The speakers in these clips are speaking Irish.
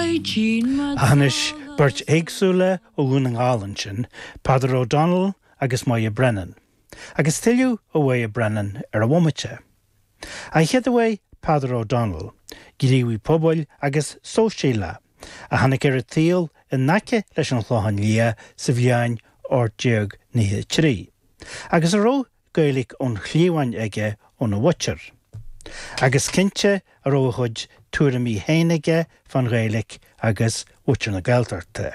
Anois, beirt éagsúla ó Dhún na nGall ansin, Peadar O'Donnell agus Moya Brennan. Agus tuilleadh ó Mhoya Brennan ar an bhomaite. An chéad uair, Peadar O'Donnell, gníomhaí pobail agus sóisialaí, a tháinig ar an tsaol in aice leis an Chlochán Liath sa bhliain 1893, agus a raibh Gaeilge ón chliabhain aige óna mhuintir. Agus cinnte go raibh a chuid tuairimí féin aige fán Ghaeilge agus muintir na Gaeltachta.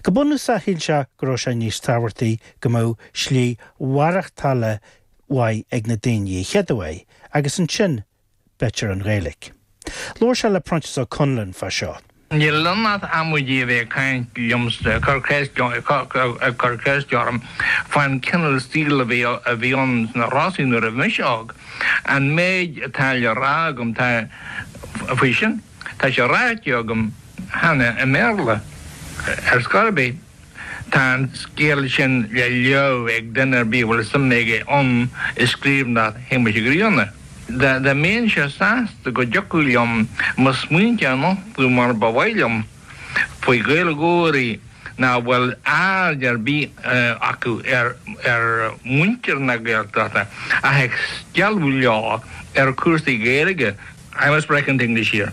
Go bunúsach shíl sé go raibh sé níos tábhachtaí go mbeadh slí mhaireachtála mhaith ag na daoine an chéad uair agus ansin, b'fhéidir an Ghaeilge. Labhair sé le Proinsias Ó Conluain fá seo. Níl ann ach amaidí a bheith ag caint liomsa, ag cur ceist orm, ag cur ceist orm faoin cineál saoil a bhí a bhí ann sna Rosa nuair a bhí mise óg. An méid atá le rá agam tá faoi sin, tá sé ráite agam cheana i mBéarla, ar scor ar bith. Tá an scéal sin le léamh ag duine ar bith a bhfuil suim aige ann i scríbhneoireacht Shéamuis Uí Ghrianna. Dá mbeinnse sásta go dtiocfadh liom mo smaointe a nochtadh mar ba mhaith liom faoi Ghaeilgeoirí nach bhfuil aird ar bith acu ar mhuintir na Gaeltachta ach ag stealladh leo ar chúrsaí Gaeilge, I must break into English here.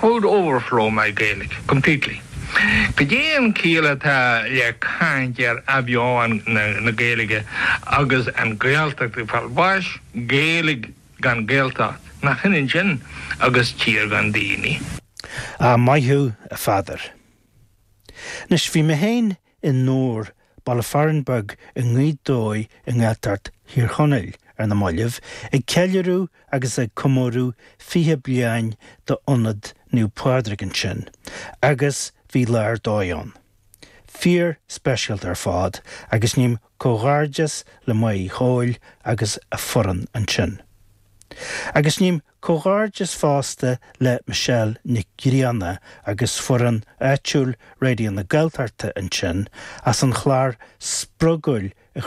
could overflow my Gaelic completely. Cad é an chiall atá le caint ar athbheochan na Gaeilge agus an Ghaeltacht ag fáil bháis? Gaeilge gan Gaeltacht, nach hionann sin agus tír gan daoine? Maith thú, a Pheadair. Anois, bhí mé féin i nDobhar, baile fearainn beag i nGaoth Dobhair i nGaeltacht Thír Chonaill, ar na maillibh, ag ceiliúradh agus ag comóradh 20 bliain d'Ionad Naomh Pádraig ansin, agus bhí lá ar dóigh ann. Fíor-speisialta ar fad, agus ním comhghairdeas le Mary Coyle agus a foireann ansin. Agus ním Comhghairdeas fosta le Michelle Nic Grianna agus foireann áitiúil Raidió na Gaeltachta ansin as an chlár spreagúil a